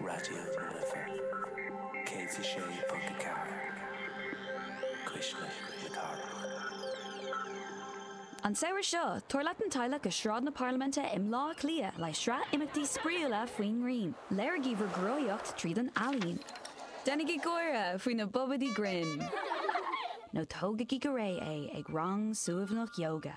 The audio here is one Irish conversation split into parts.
Raidió na Life 106.4 Cuisle na Cathrach. An samhradh seo, tabhair leat an teaghlach go Sráid na Parlaiminte i mBleá Cliath le sraith imeachtaí spraíúla faoin ngrian. Léirígí bhur gcruthaíocht tríd an ealaín. Déanaigí gáire faoi na bobaidí grinn. Nó tógaigí go réidh é ag rang suaimhneach yoga.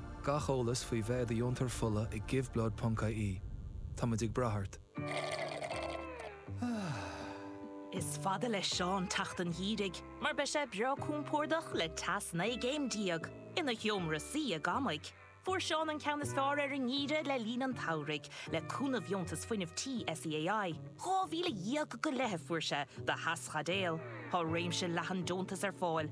Gach eolas faoi bheith i do dheontóir fola ag giveblood.ie. Táimid ag brath ort. Is fada le Seán teacht an gheimhridh mar beidh sé breá compordach le teas 19 gcéim ina sheomra suí i gCamaigh. Fuair Seán an ceann is fearr ar an ngeimhreadh le linn an tsamhraidh le cúnamh Dheontas Fuinnimh Tí SEAI. Dhá mhíle dhéag go leith a fuair sé do theaschaidéal. Tá réimse leathan deontas ar fáil,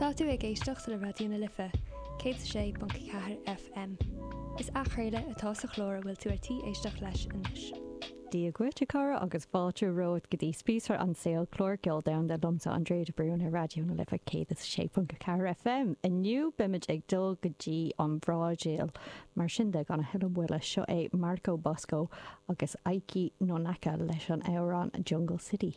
Tá tú ag éisteacht le Raidió na Life, 106.4 FM. Is athchraoladh atá sa chlár a bhfuil tú ar tí éisteacht leis anois. Dia dhuit, a chara, agus fáilte romhat go dtí Spíosra an tSaoil, clár ceoil domhanda liomsa, Andrea de Brún, ar Raidió na Life 106.4 FM. Inniu, beimid ag dul go dtí an Bhrasaíl. Mar sin de, gan a thuilleadh moille, seo é Marco Bosco agus Eiki Nonaka leis an amhrán Jungle City.